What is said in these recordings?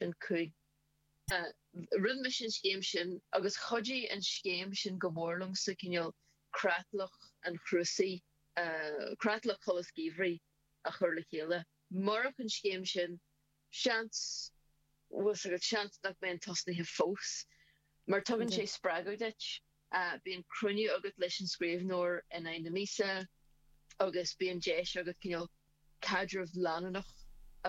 an cúl. Rinne mise an scéim sin agus chuidigh an scéim sin go mór liom sa cineál creatlach an Chrúisaigh, creatlach Cholscaradh Geimhridh a chur le chéile. Murach an scéim sin, seans, bhfuil 's agat, seans nach mbeinn tosnaithe fós mar tugann sé spreagadh duit. Bíonn cruinniú agat leis an scríbhneoir in aghaidh na míosa agus bíonn deis agat cineál caidreamh leanúnach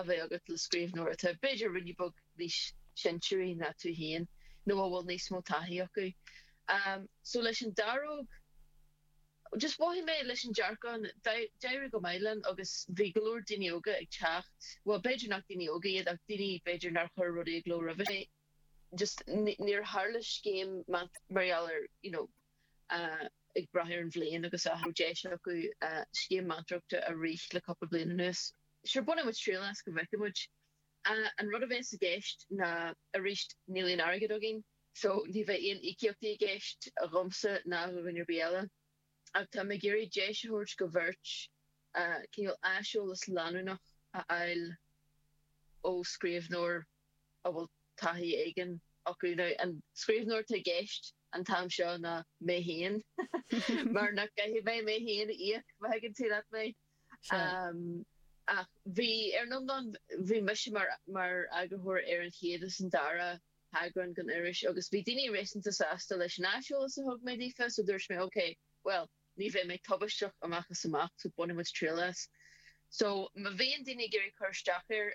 a bheith agat le scríbhneoir atá b'fhéidir roinnt beag níos sinsearaí ná tú féin nó a bhfuil níos mó taithí acu. So leis an Dearóg, just mhothaigh mé leis an Dearcán, d'éirigh go maith liom agus bhí go leor daoine óga ag teacht, bhuel b'fhéidir nach daoine óga iad ach daoine b'fhéidir nár chuir rudaí i gcló roimhe sin. just níor tharla scéim mar gheall ar you know ag brath ar an bhliain agus an raibh deis acu scéim meantóireachta a rith le cúpla bliain anuas. Sure bainfidh muid triail as go bhfeicfidh muid. An rud a bheas i gceist ná arís níl aon airgead againn so ní bheidh aon íocaíochtaí i gceist dhomsa ná dh'aon duine ar bith eile. ach tá mé ag iarraidh deis a thabhairt do bheirt cineál aiseolas leanúnach a fháil ó scríbhneoir a bhfuil taithí éigin acu. Now an scríbhneoir atá i gceist an t-am seo ná mé féin, mar nach gcaithfidh mé mé féin a íoc, má thuigeann tú leat mé. Ach bhí, ar an iomlán, bhí mise mar eagarthóir ar an chéad is an dara heagrán den iris agus bhí daoine réasúnta sásta leis an aiseolas a thug mé daofa so dúirt mé ok bhuel ní bheidh mé tubaisteach amach is amach so bainfidh muid triail as so má bhíonn daoine ag iarraidh cur isteach air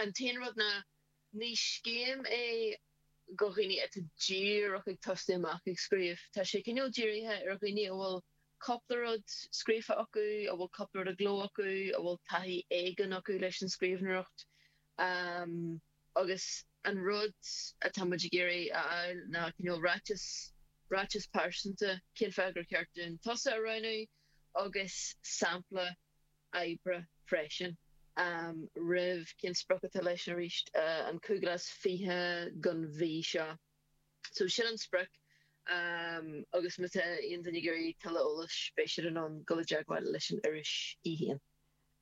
an t-aon rud ná ní scéim é do dhaoine atá díreach ag tosú amach ag scríobh tá sé cineál dírithe ar dhaoine a bhfuil cúpla rud scríofa acu a bhfuil cúpla rud i gcló acu a bhfuil taithí éigin acu leis an scríbhneoireacht. agus an rud atá muid ag iarraidh a fháil ná cineál ráiteas, ráiteas pearsanta, cén fáth gur cheart dúinn tusa a roghnú agus sampla oibre freisin. Am, roimh, cén sprioc atá leis arís, an cúigiú lá is fiche den mhí seo. So sin an sprioc agus má tá aon duine ag iarraidh tuilleadh eolais beidh siad in ann dul i dteagmháil leis an iris í féin.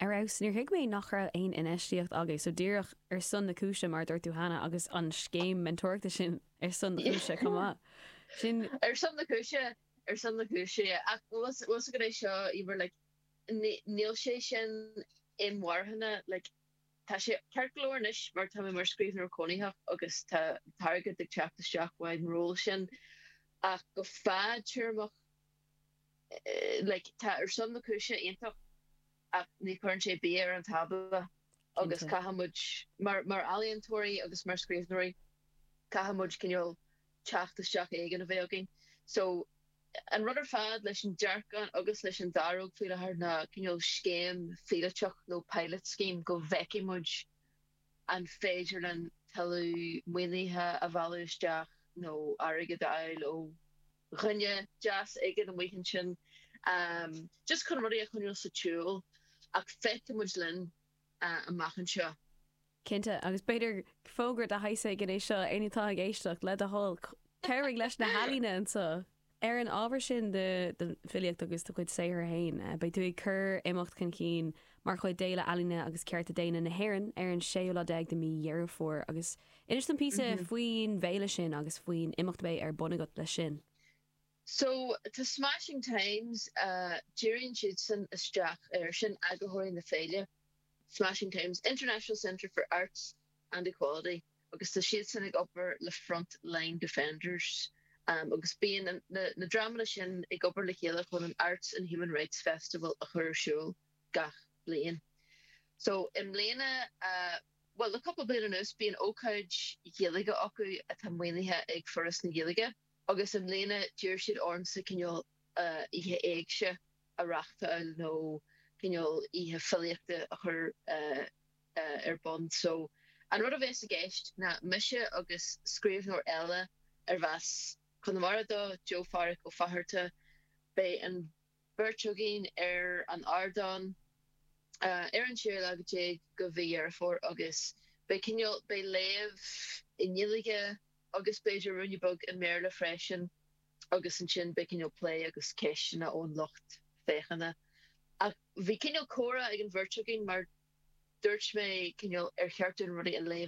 Ar fheabhas. Níor thuig mé nach raibh aon infheistíocht agat so díreach ar son na cúise mar a dúirt tú cheana agus an scéim meantóireachta sin ar son na cúise chomh maith. Ar son na cúise. Ar son na cúise, yeah. Ach bhfuil 's agat é seo, Eimear, like níl sé sin inmharthana, like tá sé ceart go leor anois mar tá mé mar scríbhneoir cónaitheach agus tá airgead ag teacht isteach ón ról sin ach go fadtéarmach, like tá ar son na cúise iontach ach ní chuireann sé bia ar an tábla agus caithfidh muid, mar ealaíontóirí agus mar scríbhneoirí, caithfidh muid cineál teacht isteach éigin a bheith againn. So an rud ar fad leis an Dearcán agus leis an Daróg faoi láthair ná cineál scéim phíolótach nó pilot scheme go bhfeicfidh muid an féidir linn tuilleadh maoinithe a mhealladh isteach nó airgead a fháil ó dhuine deas éigin amuigh ansin just chun rudaí a choinneáil sa tsiúl ach feicfidh muid rud amach anseo. Cinnte, agus b'fhéidir fógra de shaghas éigin é seo, éinne atá ag éisteacht, le do thoil, cabhraigh leis na healaíontóirí anseo! Ar an ábhar sin de, do fhilíocht agus do chuid saothair féin, beidh tú ag cur imeacht chun cinn mar chuid d'Fhéile Ealaíne agus Cearta Daonna na hÉireann ar an séú lá déag de mhí Dheireadh Fómhair agus Inis dom píosa faoin bhféile sin agus faoin imeacht a bheidh ar bun agat leis sin. So, tá Smashing Times, díríonn siadsan isteach air, sin eagraitheoirí na féile, Smashing Times, International Centre for Arts and Equality, agus tá siadsan ag obair le Front Line Defenders, agus bíonn na dreamanna sin ag obair le chéile chun an Arts and Human Rights Festival a chur ar siúl gach bliain. So, i mbliana. Bhuel, le cúpla bliain anuas bíonn ócáid Ghaeilge acu atá maoinithe ag Foras na Gaeilge agus i mbliana d'iarr siad ormsa cineál oíche Éigse a reáchtáil nó cineál oíche filíochta a chur ar bun. So, an rud a bheas i gceist ná mise agus scríbhneoir eile arb as Conamara dó, Joe Phádraic Ó Fátharta, beidh an. bheirt againn ar an ardán ar an 16 lá de mhí Dheireadh Fómhair agus beidh cineál, beidh léamh i nGaeilge agus b'fhéidir ruainne beag i mBéarla freisin agus ansin beidh cineál plé agus ceisteanna ón lucht féachana. Ach bhí cineál comhrá ag an bheirt againn mar dúirt mé cineál ar cheart dúinn rudaí a léamh